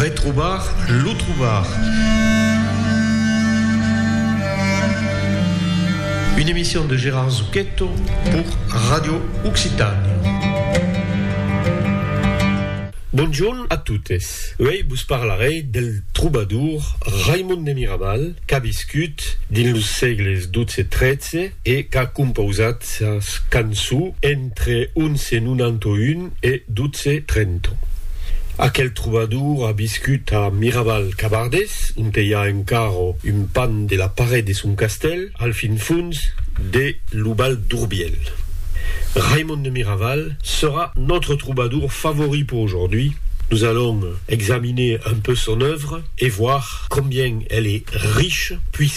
Retrobar lo trobar. Une emission de Gérard Zucchetto pour Radio Occitània. Bonjorn a totes. Uèi vos parlarèi del trobadour Raimon de Miraval qu'a viscut dins los sègles 12 e 13 e qu'a compausat sas canço entre 1191 e 1230. Aquel trobador a viscut a Miraval-Cabardés, onte i a encara un pan de la paret de son castèl, al fin fons de lo Val d'Urbièl. Raimond de Miraval serà nòtre trobador favorit per aujourd'hui. Nos allons examiner un peu son œuvre e voir combien elle est riche,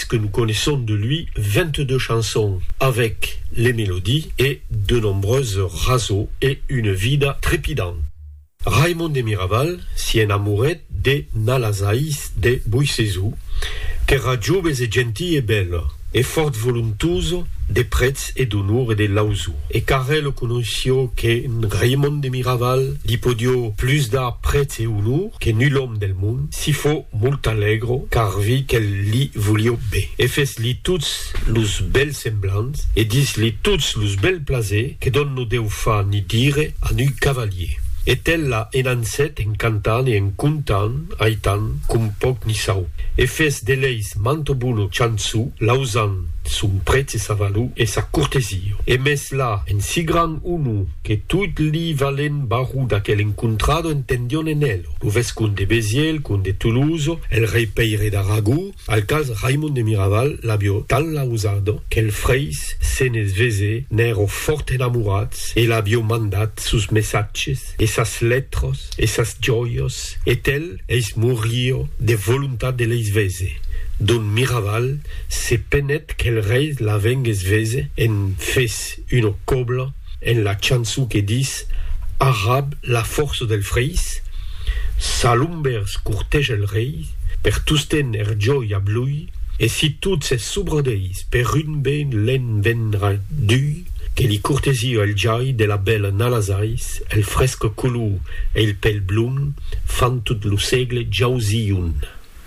que nous connaissons de lui 22 chansons avec les mélodies et de nombreuses raseaux et une vida trépidant. Raimond de Miraval s'i enamouret de Nalazais de Boissezou, qu'èra joves e gentil e bèle, e fòrt voluntuoso de prètz e d'onor e de lauso, e qu'arrel conoissió que Raimond de Miraval li podió plus dar prètz e onor que nul òme del mond, Si fo molt alègro car vi quel li volio be e fes li tots los bèls semblants e dis li tots los bèl plaser que d'on no deu fa ni dire a nu cavalier. E tel la en ansèt en cantant e en contant aitan com pòc ni sau e fes d'eleis manto bono chanço lausant son prètz e sa valor e sa cortesia e mes la en si grand onor Que tot li valent barro d'aquel encontrado entendion en el, lo vescomd de Béziers, el comde de Toulouse, el rei Pèire d'Aragó, al quals Raimond de Miraval l'avió tant lausat qu'el freis se ne vesé n'èro fòrt enamorats e l'avió mandat sos messatges e sas letras e sas jòias e tel eis morío de volontat de leis vese dont Miraval se penèt qu'el rei la vengués vese en fes una cobla En la chançon que dis Arrab la fòrça dels freis, sa lombers corteja el rei, per tosten er jòi ab lui, e si tot s'es sobradeis per un ben l'en vendrà d'ui, que li cortesia el jai de la bèla Nalazais, el fresc color e il pèl blond fan tot lo sègle jauzion.